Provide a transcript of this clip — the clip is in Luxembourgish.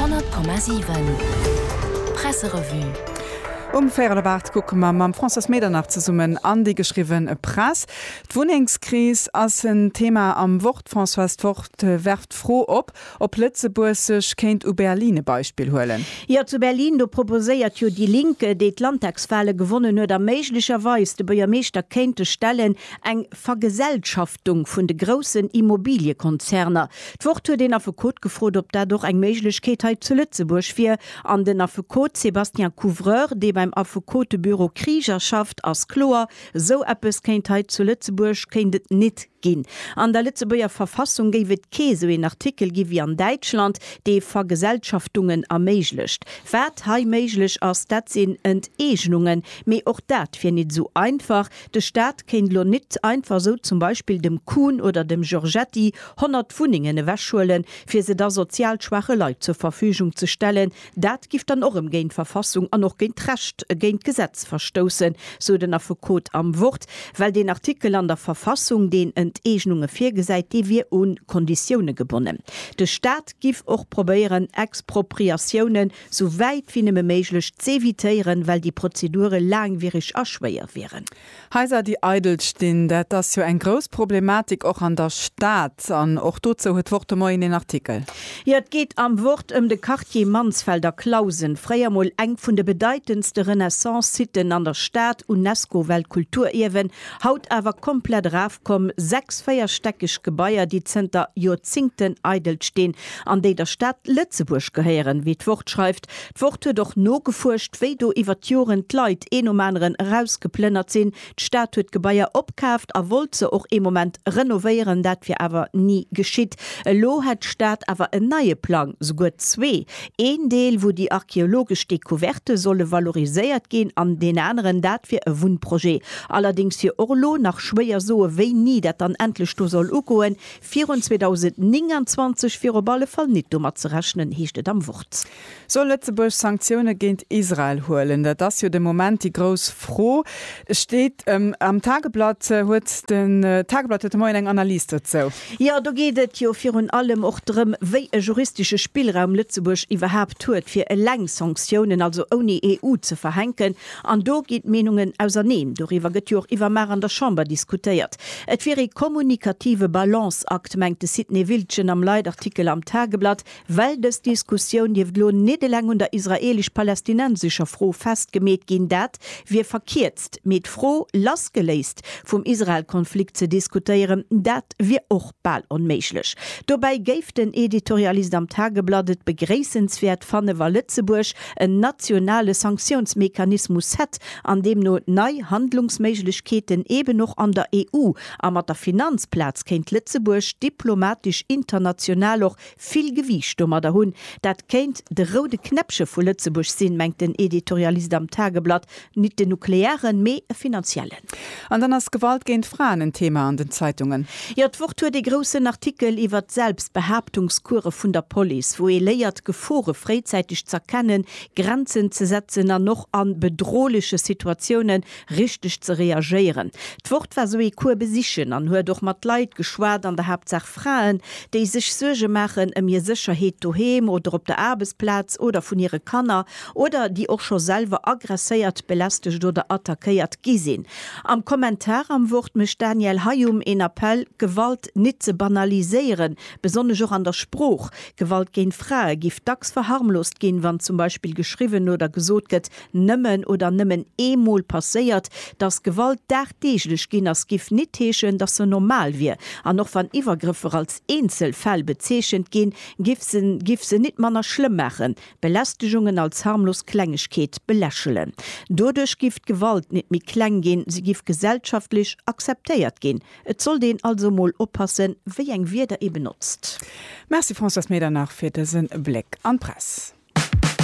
100,7 Presserevue. Um véierel op 8 kucke mer mam Françoise Medernach zesummen an déi geschriwwe Press. D'Wunnengskris ass en Thema am Wort. D'Françoise Fort werft d'Fro op, ob Lëtzebuerg sech kéint u Berlin e Beispill huelen. Jo, zu Berlin, do proposéiert jo déi Link, déi d'Landtagswale gewonnen huet a méiglecherweis de Buergermeeschter kéinte stellen, Eng Vergesellschaftung vun de groussen Immobiliekonzerner. D'Wort huet een Affekot gefrot, ob dat och eng Méiglechkeet hei zu Lëtzebuerg wier. An den Affekot Sébastien Couvreur, dee beim Affekotebüro Krieger schafft, ass kloer, Esou eppes kéint hei zu Lëtzebuerg kéint et nit ginn. An der Lëtzebuerger Verfassung géif et kee esou een Artikel gi wéi an Däitschland, dee Vergesellschaftungen erméiglecht. Wat hei méiglech ass, dat sinn Enteegnungen. Mee och dat wier nit esou einfach. De Staat kéint elo nit einfach esou zum Beispill dem Kuhn oder dem Giorgetti 100 Wunnengen ewechhuelen, fir se da sozial schwaache Leit zur Verfügung ze stellen. Dat giff dann och erëm géint d'Verfassung an och géint d'Recht, géint d'Gesetz verstoussen, sou den Affekot am Wort, well deen Artikel an der Verfassung, deen Enteegnunge virgesäit, dee wier u Konditioune gebonnen. De Staat giff och probéieren, Expropriatiounen sou wäit wéi nëmme méiglech z'evitéieren, well déi Prozedure laangwiereg a schwéier wieren. Haiser, déi eidel stinn, dat ass jo eng grouss Problematik och an der Stad. An och dozou huet d'Wort de Moien een Artikel. Jo, et geet am Wort ëm de Quartier Mansfeld a Clausen, fréier mol eng vun de bedeitendste Renaissance-Siten an der Stad, UNESCO-Weltkulturierwen, haut awer komplett erafkomm, sechs véierstäckeg Gebaier, déi zënter Joerzingten eidel stinn, an déi der Stad Lëtzebuerg gehéieren, wéi d'Wort schreift. D'Wort huet och nogefuerscht, wéi do iwwer d'Joren d'Leit een nom aneren erausgeplënnert sinn. D'Stad huet d'Gebaier opkaaft a wollt se och ee Moment renovéieren, dat wier awer ni geschitt. Elo hätt d'Stad awer en neie Plang, souguer zwee, een Deel, wou déi archeologesch Decouverte solle valoriséiert ginn, an deen aneren, dat wier e Wunnprojet. Allerdéngs wier och elo nach schwéier soe wéini dat dann endlech do soll ugoen, Virun 2029 wier op alle Fall nit domat ze rechnen, heescht et am Wort. Soll Lëtzebuerg Sanktioune géint Israel huelen? Dat ass jo de Moment déi grouss Fro, steet am Tageblatt. Huet den Tageblatt huet de Moien eng Analys dozou. Jo, do geet et jo virun allem och drëm, wéi e juristesche Spillraum Lëtzebuerg iwwerhaapt huet, fir eleng Sanktiounen, also ouni EU, ze verhänken. An do ginn d'Meenungen auserneen. Doriwwer gëtt jo och iwwermaach an der Chamber diskutéiert. Et wier ee kommunikative Balanceakt, mengt de Sidney Wiltgen am Leitartikel am Tageblatt, well dës Diskussioun dierft elo nit eleng un der israeelesch-palästinensescher Fro festgemeet ginn. Dat wier verkierzt. Mee d'Fro lassgeléist vum Israel-Konflikt ze diskutéieren, dat wier och bal onméiglech. Dobäi géif den Editorialist am Tageblatt et begréissenswäert fannen, wa Lëtzebuerg en nationale Sanktiounsmechanismus hätt an deemno nei Handlungsméiglechkeeten eben och an der EU a mat der Finanzplaz kéint Lëtzebuerg diplomatesch international och vill Gewiicht domadder hunn. Dat kéint de roude Knäppche vu Lëtzebuerg sinn, mengt den Editorialist am Tageblatt, Nit den nuklearen, mee e finanziellen. An dann ass Gewalt géint Fraen en Thema an den Zeitungen. Jo, d'Wort huet ee groussen Artikel iwwer d'Selbstbehaaptungskuere vun der Police, wou ee léiert, Gefore fréizäiteg z'erkennen, Grenzen ze setzen an och a bedrohleche Situatioune richteg ze reagéieren. D'Wort war sou ee Cours besichen an huet och mat Leit geschwat, an der Haaptsaach Fraen, déi sech Suerge maachen ëm hir Sécherheet doheem oder op der Aarbechtsplaz oder vun hire Kanner oder déi och scho selwer agresséiert, belästegt oder attackéiert gi sinn. Am Kommentar am Wort mécht d'Danièle Hayum een Appell, Gewalt nit ze banaliséieren, besonnesch och an der Sprooch. Gewalt géint Frae giff dacks verharmlost ginn, wann zum Beispill geschriwwen oder gesot gëtt, nëmmen oder nëmmen ee Mol passéiert, dass Gewalt dagdeeglech ginn ass, giff nit heeschen, dass se normal wier. An och wann Iwwergrëffer als eenzel Fäll bezeechent ginn, giff se nit manner schlëmm maachen. Belästegungen als harmlos Klengegkeet belächelen. Doduerch giff d'Gewalt nit méi kleng ginn, se giff gesellschaftlech akzeptéiert ginn. Et sollt een also emol oppassen, wéi eng Wierder ee benotzt. Merci Françoise Medernach fir dësen Bléck an d'Press.